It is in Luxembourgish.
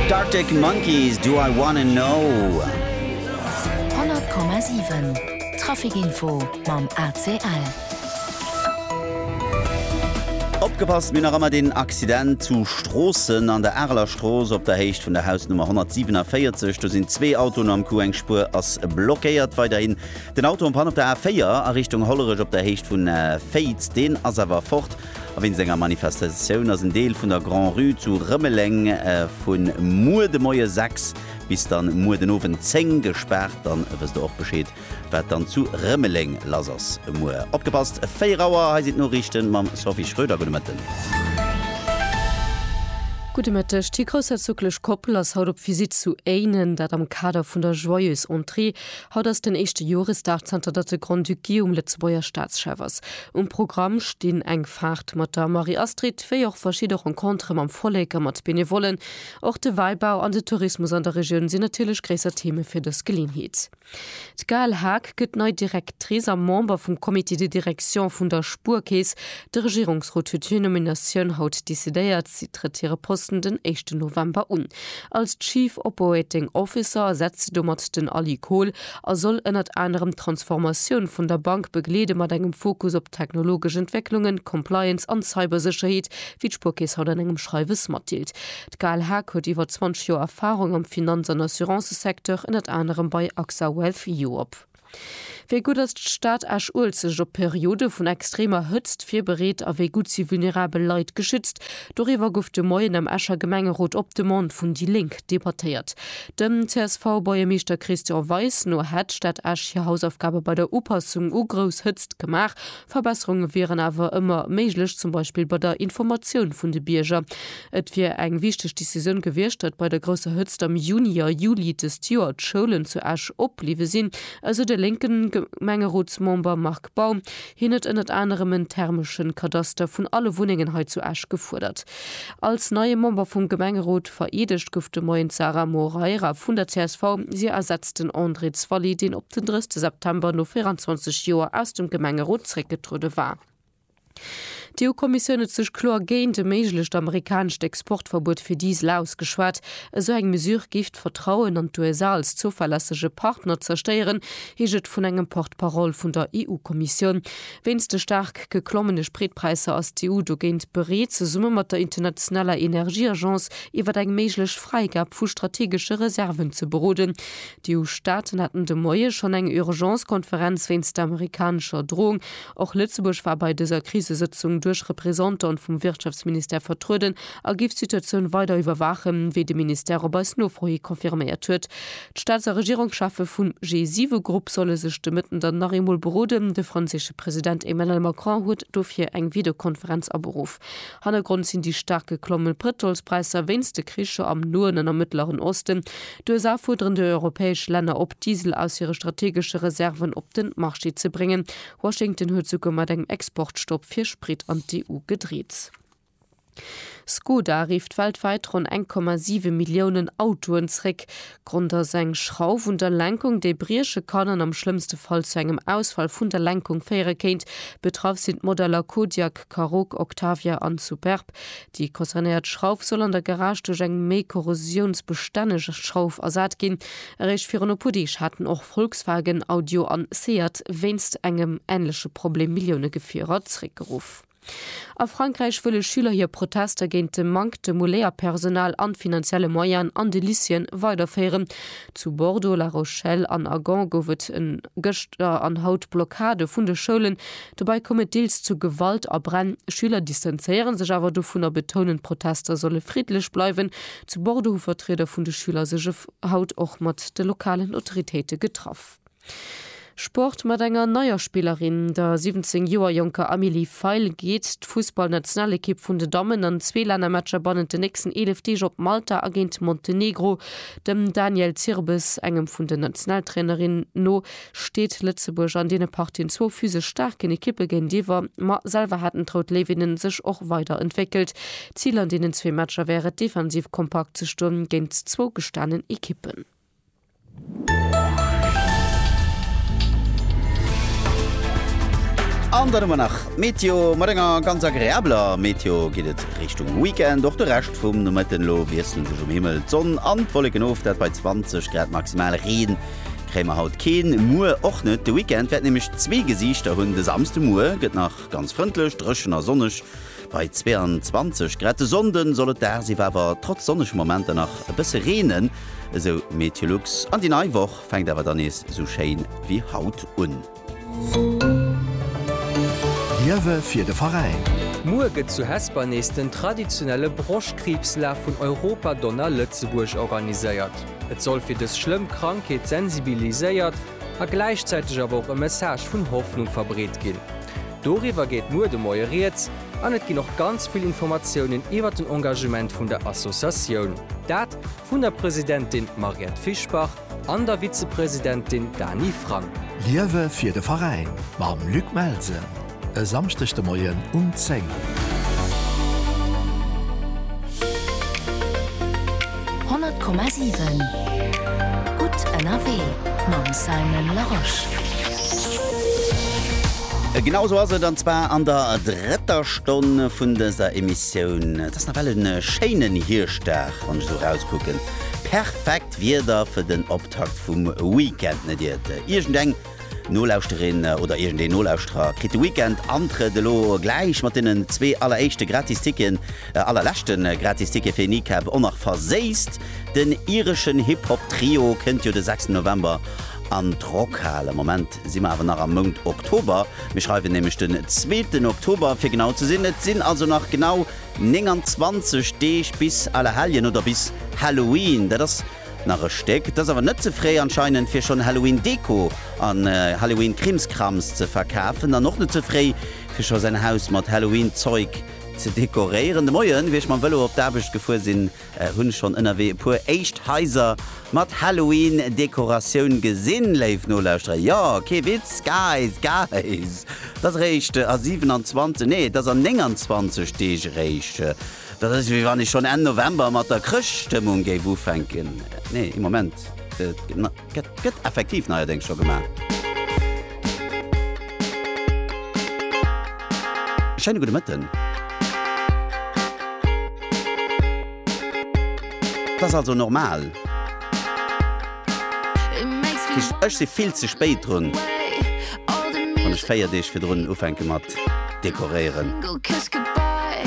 D'Arctic Monkeys, Do I Wanna Know. 100,7 Traficinfo mam ACL. Opgepasst, mir hunn nach ëmmer deen Accident zu Stroossen an der Areler Strooss op der Héicht vun der Hausnummer 147. Do sinn zwee Autoen am Coup, eng Spuer ass blockéiert. Weiderhin den Auto en Panne op der A4 a Richtung Hollerech op der Héicht vun Féiz, deen ass awer fort. A wéinst enger Manifestatioun ass en Deel vun der Grand-Rue zu Rëmeleng vu muer de Moie 6 bis dann muer den Owend 10 gespaart. Dann wësst der och Bescheed, wat dann zu Rëmeleng lass ass muer. Opgepasst, 4 Auer, hei sinn d'Noriichten mam Sophie Schröder. Gudde Mëtten. Gudde Mëtteg. D'Hiergroussherzoglesch Koppel ass haut op Visitt zu Éinen, dat am Kader vun der Joyeuse Entrée Haut ass den éischte Joresdag zanter datt de Grand-Duc Guillaume Lëtzebuerger Staatschef ass. Um Programm stinn eng Faart mat der Marie-Astrid, wéi och verschidde Rencontere mam Vollek a mat Benevollen. Och de Wäibau an de Tourismus an der Regioun sinn natierlech gréisser Theme fir dës Geleeënheet. D'Gaëlle Haag gëtt nei Directrice a Member vum Comité de direction vun der Spuerkeess. De Regierungsrot huet hir Nominatioun haut decidéiert. Si trëtt hire Posten den éischten November un. Als Chief Operating Officer ersetzt se domat den Ali Kohl a soll ënnert anerem d'Transformatioun vun der Bank begleede mat engem Fokus op technologesch Entwécklungen, Compliance an Cybersécherheet, wéi d'Spuerkeess haut an engem Schreiwes matdeelt. D'Ghaal Haque huet iwwer 20 Joer Erfarung am Finanz an Assurancësecteur, ënnert anerem bei Axa Wealth Europe. Wéi gutt ass d'Stad Esch-Uelzecht op Periode vun extremer Hëtzt virbereet a wéi gutt si vulnerabel Leit geschützt? Doriwwer gouf de Moien am Escher Gemengerot op Demande vun déi Lénk debattéiert. Dem CSV-Buergermeeschter Christian Weis no hätt d'Stad Esch hir Hausaufgabe bei der Upassung u grouss Hëtzt gemaach, Verbesserunge wieren awer ëmmer méiglech, zum Beispill bei der Informatioun vun de Bierger. Et wier eng wichteg Decisioun gewiescht, datt bei der grousser Hëtzt am Juni a Juli dëst Joer d'Schoulen zu Esch opbliwwe sinn, esou de lénke Gemengerotsmember Marc Baum. Hien huet ënnert anerem en thermesche Kadaster vun alle Wunnengen hei zu Esch gefuerdert. Als neie Member vum Gemengerot vereedegt gouf de Moien d'Sarah Moreira vun der csv. Si ersetzt den André Zwally, deen op den 30 September no 24 Joer aus dem Gemengerot zréckgetruede war. D'EU-Kommissioun huet sech kloer géint e méiglecht amerikanescht Exportverbuet fir Diesel ausgeschwat. Esou eng Mesure géif d'Vertrauen an d'USA als zouverlässege Partner zerstéieren, heescht et vun engem Porte-parole vun der EU-Kommissioun. Wéinst de staark geklommene Spritpräisser ass d'EU dogéint bereet, zesumme mat der internationaler Energieagence iwwer eng méiglech Fräigab vu strategesche Reserven ze beroden. D'EU-Staaten haten de Moie schonn eng Urgence-Konferenz wéinst der amerikanescher Drohung. Och Lëtzebuerg war bei dëser Krisesëtzung duerch Representantë vum Wirtschaftsministère vertrueden a géif d'Situatioun weider iwwerwaachen, wéi de Ministère op eis Nofro hi confirméiert huet. D'Staats a Regierungscheffe vum G7-Grupp solle sech de Mëtten dann nach eemol beroden. De franséische President Emmanuel Macron huet dofir eng Videokonferenz aberuff. Hannergrond sinn déi staark geklomme Pëtrolspräisser wéinst de Kricher am Noen an am Mëttleren Osten. D'USA fuerderen déi europäesch Länner op, Diesel aus hire strategesche Reserven op den Marché ze bréngen. Washington huet souguer mat engem Exportstopp fir Sprit an d'EU gedreet. Skoda rifft weltwäit ronn 1,7 Milliounen Autoen zréck. Grond ass eng Schrauf un der Lenkung, déi brieche kann an am schlëmmste Fall zu engem Ausfall vun der Lenkung féiere kéint. Betraff sinn d'Modeller Kodiaq, Karoq, Octavia an Superb. Déi concernéiert Schrauf soll an der Garage duerch eng méi korrosiounsbestänneg Schrauf ersat ginn. Eréischt virun e puer Deeg haten och Volkswagen, Audio an Seat wéinst engem änleche Problem Millioune Gefierer zréckgeruff. A Frankräich wëlle Schüler hir Protester géint de Manktem u Léierpersonal an finanzielle Moyen an de Lycéeën weiderféieren. Zu Bordeaux, La Rochelle an a Gand gouf et gëschter an haut Blockade vun de Schoulen. Dobäi koum et deels zu Gewalt a Bränn. Schüler distanzéiere sech awer dovun a betounen, d'Protester solle friddlech bleiwen. Zu Bordeaux hu Vertrieder vun de Schüler sech haut och mat de lokalen Autoritéite getraff. Sport mat enger neier Spillerin, der 17 Joer jonker Amélie Feil, geet d'Fussballnationalekipp vun den Dammen an zwee Lännermatcher bannent den nächsten 11 Deeg op Malta a géint Montenegro. Dem Daniel Zirbes, engem vun den Nationaltrainerin no, steet Lëtzebuerg an deene Partien zwou physesch staarken Ekippe géintiwwer, ma selwer haten d'Rout Léiwinne sech och weider entwéckelt. Zil an deenen zwee Matcher wär et, defensiv kompakt ze stoen géint zwou gestanen Ekippen. An dann hu mer nach d'Meteo. Mat enger ganz agreabler Meteo geet et Richtung Weekend. Och de Rescht vum Nomëtten elo wiesselen sech um Himmel d'Sonn an d'Wolleken of, dat bei 20 Grad maximal. Reen kréie mer haut keen, muer och net. De Weekend wäert nämlech zwee Gesiichter hunn, de Samsdemuer gëtt nach ganz frëndlech, dréchen a sonneg. Bei 22 Grad de Sonnden soll et dagsiwwer awer trotz sonnege Momenter nach e bësse reenen, esou Meteolux. An déi nei Woch fänkt awer dann nees esou schéin wéi haut un. Liewe fir de Veräin! Muer gëtt zu Hesper nees den traditionelle Broschtkriibslaf vun Europa Donna Lëtzebuerg organiséiert. Et soll fir dës schlëmm Krankheet sensibiliséiert a gläichzäiteg awer och e Message vun Hoffnung verbreet ginn. Doriwwer geet muer de Moie Rieds an et ginn och ganz vill Informatiounen iwwer den Engagement vun der Associatioun. Dat vun der Presidentin Mariette Fischbach an der Vizepresidentin Dany Frank. Liewe fir de Veräin mam Luc Melsen. E Samschdeg de Moien um 10. Honnert Komma siwen, gutt ënnerwee mam Simon Larosche. Genau esou ass et, an zwar an der drëtter Stonn vun dëser Emissioun. Et ass nawell e schéinen Hierschtdag, wann ech esou erauskucken. Perfekt Wieder fir den Optakt vum Weekend, net iert iergendeng Nolauschterin oder iergendeen Nolauschterer kritt de Weekend Antrëtt elo gläich mat deenen zwee alleréischte gratis Ticketen, allerleschte gratis Ticket fir Kneecap och nach verséisst. Den ireschen Hip-Hop Trio kënnt jo de sechsten November an d'Rockhal. Am Moment si mer awer nach am Mount Oktober, mir schreiwen nämlech den zweeten Oktober fir genau ze sinn. Et sinn also nach genau 29 Deeg bis Allerhelljen oder bis Halloween. Dat ass Nach e Stéck, t'ass awer net ze fréi anscheinend fir schonn Halloween Deko an Halloween Krimskrams ze verkafen an och net ze fréi fir scho säin Haus mat Halloween Zeug ze dekoréieren. De Moien wéi ech mam Velo op d'Aarbecht gefuer sinn, hunn schonn ënnerwee e puer éischt Haiser mat Halloween Dekoratioun gesinn. Léif Nolauschterer, jo, kee Witz, Guys, Guys, t'ass eréischt a 27, nee t'ass a 29 Deeg eréischt Dat ass wéi wann ech schonn Enn November mat der Chrëschtstëmmung géif ufänken. Nee, ee Moment, et gëtt effektiv neierdéngs scho gemaach. E schéine gudde Mëtten. Et ass also normal. Ech si vill ze spéit drun, wann ech 4 Deeg virdrun ufänke mat dekoréieren.